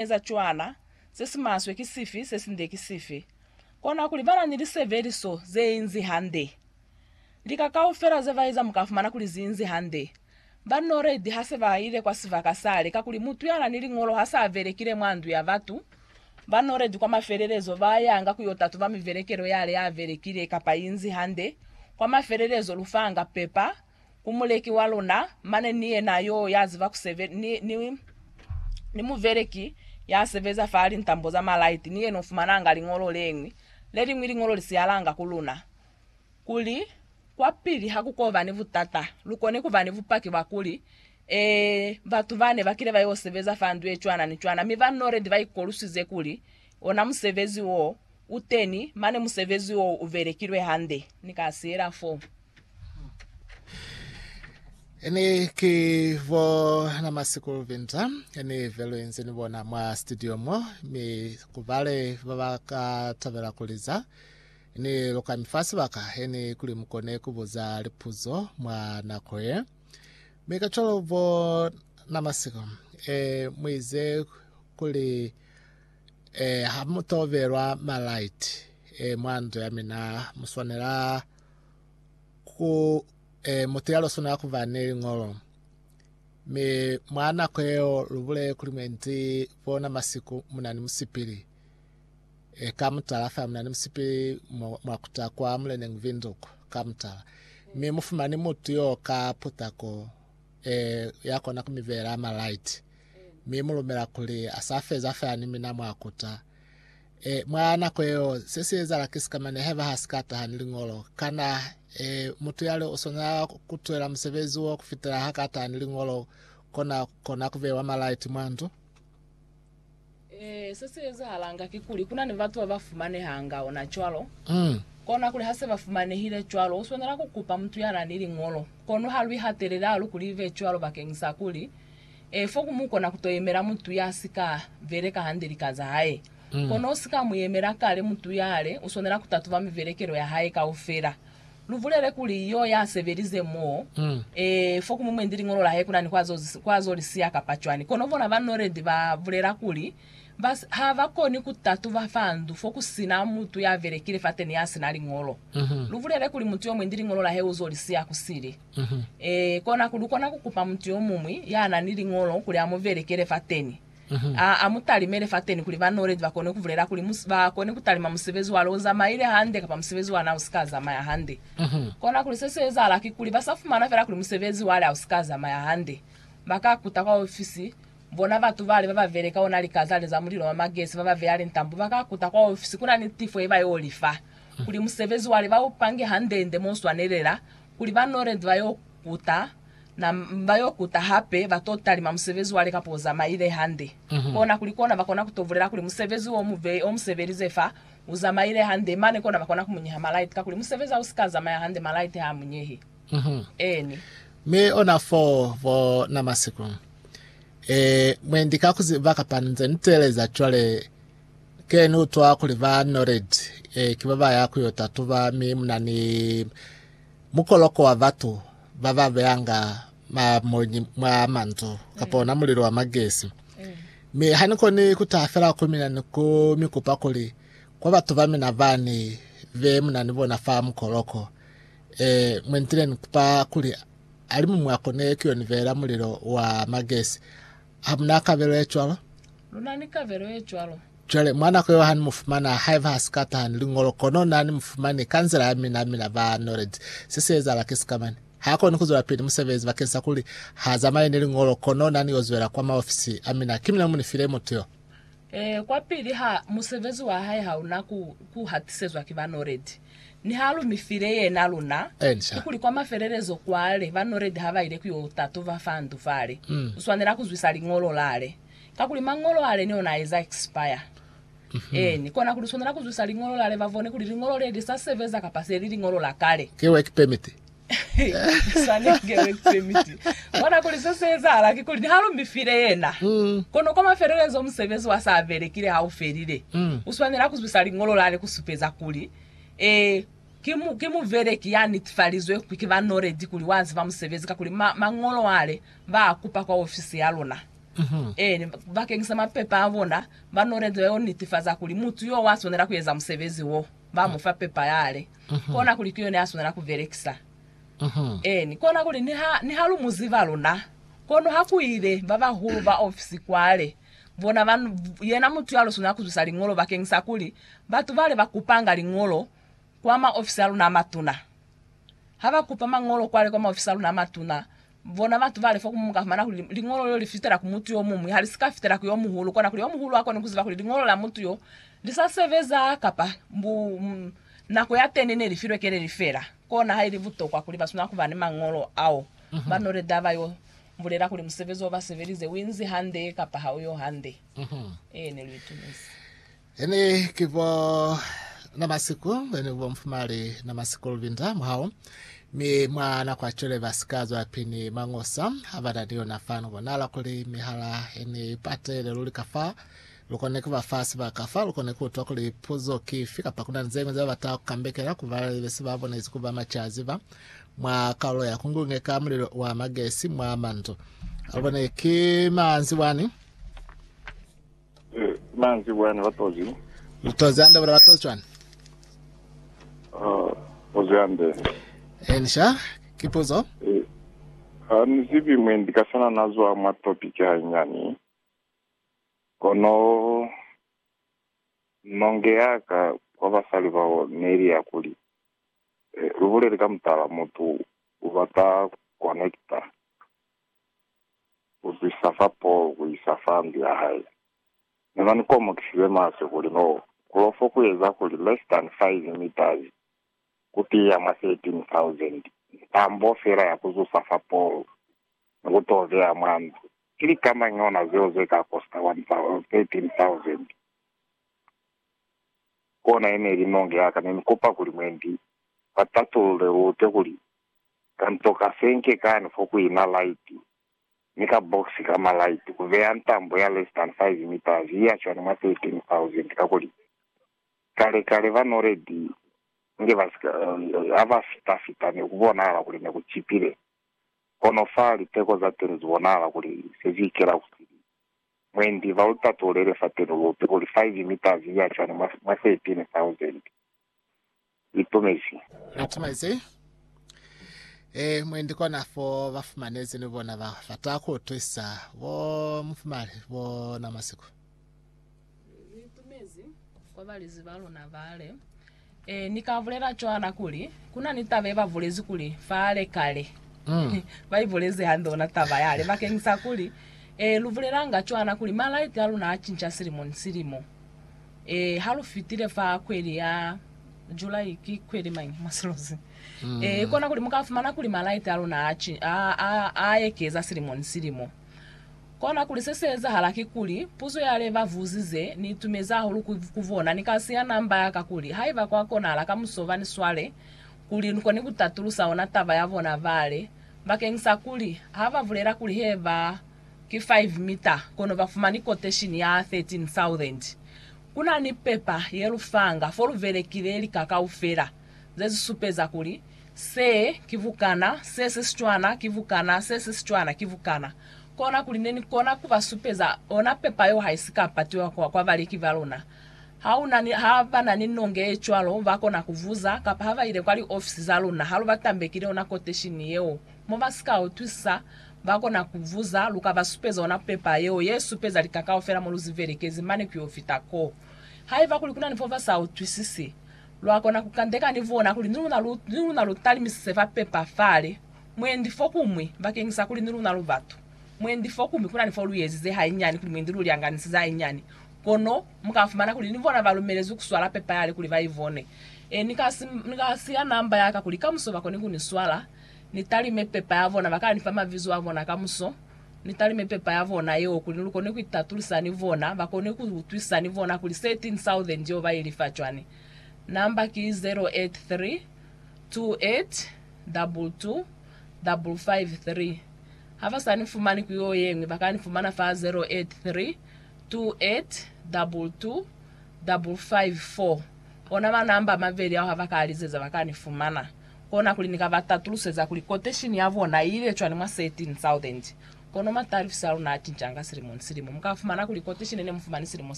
eza cwana se si maswe ki sifi, se si nde ki sifi. Kona kuli bana ni lisebeliso ze inzi hande. Lika kaufela ze ba eza mu ka fumana kuli zi inzi hande. Ba noledi ha se ba ile kwa sibaka sale, kakuli mutu ya na ni liñolo ha sa belekile mwa ndu ya batu, ba noledi kwa mafelelezo ba yanga ku yo tatuba mibelekelo yale ya belekile kapa inzi hande, kwa mafelelezo lufanga, pepa, ku muleki wa luna, mane ni yena yo ya ziba ku sebe, ni, ni, ni muveleki ya sebeza fa lintambo za malaiti, ni yena u fumananga liñolo leñwi, leliñwi liñolo li siyalanga ku luna, kuli, Kwapili ha ku koba ni butata, lu kone ku ba ni bupaki bwa kuli, Ee, batu bane ba kile ba yo sebeza fa ndu ye cwana ni cwana, mi ba noledi ba ikoluswize kuli ona musebezi wo u teni, mane musebezi wo u belekilwe hande. Ni ka siyela foo. Ene ki bo na masikulu vinta ene velo yenze ni bona mwa studio mo mi kubale ba ba ka tabela kuliza ni luka mi fa sibaka ene kuli mukone kubuza lipuzo mwa nako ye mi ka cwalo bo na masiko e muize kuli e ha mutobelwa malaiti e mwa ndo ya mina muswanela ku e, mutu ya loswana ku ba ne liñolo. Mi mwa nako yeo lubule kuli mwendi bona masiku muna ni musipili e, ka mutala fa muna ni musipili mwa kuta kwa muleneng Windhoek ka mutala, mi mufumani mutu yo ka putako e, ya kona ku mi beela ma light mi mulumela kuli asafeza fa ni mina mwa kuta E, mwa nako yeo, se si ezala ki sikamane haiba ha si ka taha ni liñolo. Kana, e, mutu yale u swanela ku twela musebezi wo kufitela ha ka taha ni liñolo kona, kona ku bewa malaiti mwa ndu? Ee, se si ezahalanga kikuli, ku na ni batu ba ba fumanehanga ona cwalo. Mm. Kona kuli ha se ba fumanehile cwalo, u swanela ku kupa mutu ya na ni liñolo. Kono ha lu ihatelele hahulu kuli li be cwalo bakeñisa kuli Ee, fo ku mu kona ku to yemela mutu ya si ka beleka hande lika za hae. Kono u si ka mu yemela kale mutu yale, u swanela ku tatuba mibelekelo ya hae kaufela. Lu bulele kuli yo ya sebelize mo, ee, fo ku mu mwendi liñolo la hae ku na ni ku azo, ku azo li siya kapa cwani. Kono bona ba noledi ba bulela kuli ba, ha ba koni ku tatuba fa ndu fo ku si na mutu ya belekile fateni ya si na liñolo. Lu bulele kuli mutu yo mwendi liñolo la hae u zo li siya kusili. Ee, kona ku lukona ku kupa mutu yomuñwi ya na ni liñolo kuli a mu belekele fateni, a a mu talimele fateni kuli banoledi ba kone ku bulela kuli mu, ba kone ku talima musebezi wa lwo zamaile hande kapa musebezi wa na u si ka zamaya hande. Kona kuli se si ezahala kikuli ba sa fumana fela kuli musebezi wale ha u si ka zamaya hande, ba ka kuta kwa ofisi, bona batu bale ba ba beleka ona likazale za mulilo wa magesi ba ba beya lintambo, ba ka kuta kwa ofisi ku na ni tifo ye ba yo li fa, kuli musebezi wale ba u pange hande-nde mo swanelela. kuli ba Norent ba y'o kuta, na ba y'o kuta hape, ba t'o talima musebezi wa le kapa o zamaile hande. Kona kuli kona ba kona ku t'o bulela kuli musebezi wo mu vei o mu sebelize fa, u zamaile hande, mane kona ba kona ku mu nyeha malaiti, kakuli musebezi ha u si ka zamaya hande, malaiti ha a mu nyehi. Eeni. Mi ona fo bo na masiku, ee, mwendi ka ku ziba kapa nze ni teeleza cwale, Ke ni utwa kuli ba Nored e, ki ba ba ya ku yo tatuba, mi muna ni mukoloko wa batu ba ba beyanga mamonyi mwa mandu kapa ona mulilo wa magesi. Mi ha ni koni ku taha fela ku mina ni ku mi kupa kuli kwa batu ba mina ba ni be muna ni bona fa mukoloko, e, mwe nitile ni kupa kuli alimumu akone ku yo ni beela mulilo wa magesi, Hamuna kabelo ye cwalo? Luna ni kabelo ye cwalo. Cwale, mwa nako yeo hani mufumana, haiba ha si ka taha ni Liñolo, kono Na ni mufumani, ka nzila ya mina, mina ba noledi. Se si ezahala ki sikamani. Ha koni kuzwelapili musebezi bakeni sa kuli ha zamaye ni Liñolo, kono Na ni yo zwela kwa maofisi a mina. Ki mina mu ni file mutu yo. Ee, kwapili ha, musebezi wa hae hauna ku, ku hatisezwa ki ba noledi. ni ha lu mi file yena luna, kikuli kwa mafelelezo kwale ba noledi ha ba ile ku yo tatuba fa ndu fale, u swanela ku zwisa Liñolo lale. Kakuli Mañolo ale ni ona a eza expire. Eeni, kona kuli u swanela ku zwisa Liñolo lale ba bone kuli Liñolo le li sa sebeza kapa se li Liñolo la kale. Ki work permit Swanenge work permit. Bona kuli se se ezahala ki kuli niha lu mi file yena, kono kwa mafelelezo musebezi wa sa belekile ha u felile, u swanela ku zwisa liñolo la le ku supeza kuli, Ee, ki, ki mubeleki ya netifalizwe ki ba noledi kuli wa ziba musebezi, kakuli ma, mañolo a le ba a kupa kwa ofisi ya luna. Ee, bakeng sa mapepa a bona, ba noledi ba yo netifaza kuli mutu yo wa swanela ku eza musebezi wo, ba mu fa pepa ya le. kona kuli ki yona ya swanela ku belekisa. Eeni, kona kuli niha, niha lu mu ziba luna, kono ha ku ile ba bahulu ba ofisi kwale, bona ba, yena mutu ya lo swanela ku zwisa liñolo bakeng sa kuli batu bale ba kupanga liñolo kwa maofisi a luna a matuna, ha ba kupa mañolo kwale kwa maofisi a luna a matuna, Bona batu bali fo kumu mukafumana kuli liñolo leo lifitela ku mutu yomuñwi, halisika fitela ku yomuhulu, kona kuli yomuhulu akone kuziba kuli liñolo la mutu yo lisa sebeza kapa mbu nako yateni neli filwe keleli feela. Kona haili butokwa kuli baswanela kuba ni mañolo ao. Ba ñole taba yo bulela kuli musebezi o basebelize uinzi hande kapa hauyo hande. Ee, neluitumezi. Ene ki bo na masiku, ene ki bo mfumali na masiku lubinda mwahao, mi mwa nako ya cwale ba si ka zwa pini mañosa ha ba na ni yona fani. Bonala kuli mihala ene i patele luli ka fa lu kone ku ba fa sibaka, fa lu kone ku utwa kuli puzo ki ifi, kapa ku na ni ze ñwi ze ba bata ku kambekela ku ba be si ba bonezi ku ba macaziba mwa kaulo ya ku ngungeka mulilo wa magesi mwa mandu. Ha lu bone ki manzi wani. Ki mañi ki buya ni batozi? Mutozi hande bule batozi cwani? Tozi hande. Eni sha, ki puzo. Ha ni zibi mwi ndi ka sana na zwa mwa topiki hainyani, kono nonge ya ka kwa basali bao ne li ya kuli, Lu buleli ka mutala, mutu u bata connecta. ku zwisa fa Paul ku isa fa ndu ya hae. Mina ni komokisize maswe kuli no kulo fo ku eza kuli less than five meters ku tiya mwa 13,000 ntambo fela ya ku zusa fa Paul ni ku to beya mwa ndu. Ki lika mañi ona zeo ze ka kosta 13,000? Kona ye ne li nonge ya ka. Ne ni kupa kuli mwendi ba tatulule lute kuli Ka nto ka fenke kani fo ku ina laiti, ni ka box ka malaiti, ku beya ntambo ya less than five meters ye ya cwani mwa 13,000, kakuli kale kale ba noledi nge ba sika, ha ba fita fita ne ku bonahala kuli ne ku cipile, kono fa liteko za teni zu bonahala kuli se zu ikela ku sili. Mwendi, ba lu tatululele fateni lupe kuli five meters ye ya cwani mwa 13,000. itumezi. Itumezi. E, mwendi kona fo ba fumanezi ni bona ba bata ku utwisa bo mufumali bo na masiku. Itumezi kwa balezi ba luna bale. E, ni ka bulela cwana kuli, kuna ni taba ye ba bulezi kuli fale kale. Ba ibulezi hande ona taba yale, bakeng sa kuli, E, lu bulelanga cwana kuli malaiti a luna a cinca silimo ni silimo. Ee, ha lu fitile fa kweli ya July, ki kweli mañi mwa silimo se? Ee, i kona kuli mu ka fumana kuli malaiti a luna a ci, a, a, a ekeza silimo ni silimo. Kona kuli se se ezahala kikuli, puzo ya le ba vuzize ni itumezi hahulu ku, ku bona, ni kasi ya namba ya ka kuli, haiba kwa konahala kamuso ba ni swale, kuli ni koni ku tatulusa ona taba ya bona bale, bakeñisa kuli, ha ba bulela kuli he ba ki 5 mita, kono ba fumani quotation ya 13,000. Ku na ni pepa ye lu fanga fo lu belekile lika kaufela ze si supeza kuli se ki bukana, se si si cwana ki bukana, se si si cwana ki bukana. Kona kuli ne ni kona ku ba supeza ona pepa yeo ha i si ka patiwa kwa, kwa baleki ba luna. Ha u na ni, ha ba na ni nonge ye cwalo, ba kona ku buza, kapa ha ba ile kwa liofisi za luna ha lu ba tambekile ona quotation yeo, mo ba si ka utwisisa, Ba kona ku vuza, Lu ka ba supeza ona pepa yeo ye supeza lika kaufela mo lu zi belekezi mane ku yo fita ko? Haiba kuli ku na ni fo ba sa utwisisi, lwa kona ku kandeka ni bona kuli ni luna lu, ni luna lu talimisise fa pepa fale, mwendi fokuñwi, bakeñisa kuli ni luna lu batu. Mwendi fokuñwi, ku na ni fo lu ezize hainyani, kuli mwendi lu lyanganisize hainyani. Kono, mu ka fumana kuli ni bona ba lumelezwi ku swala pepa yale kuli ba i bone. E, ni ka si, ni ka siya namba ya ka kuli kamuso ba kone ku ni swala. Ni talime pepa ya bona, ba ka nifa mabizo a bona kamuso. Ni talime pepa ya bona yeo kuli ni lukone ku itatulisa ni bona, ba kone ku utwisa ni bona kuli 13000 yeo ba i lifa cwani. Namba ki 0832822553. Ha ba sa ni fumani ku yeo yeñwi, ba ka ni fumana fa 0832822554. Ona manamba a mabeli ao ha ba ka a lizeza, ba ka ni fumana. Kona kuli ni ka ba tatuluseza kuli koteshini ya bona i ile cwani mwa 13000. Kono matalifisi a luna a cincanga silimo ni silimo. Mu ka fumana kuli koteshini ne mu fumani silimo sa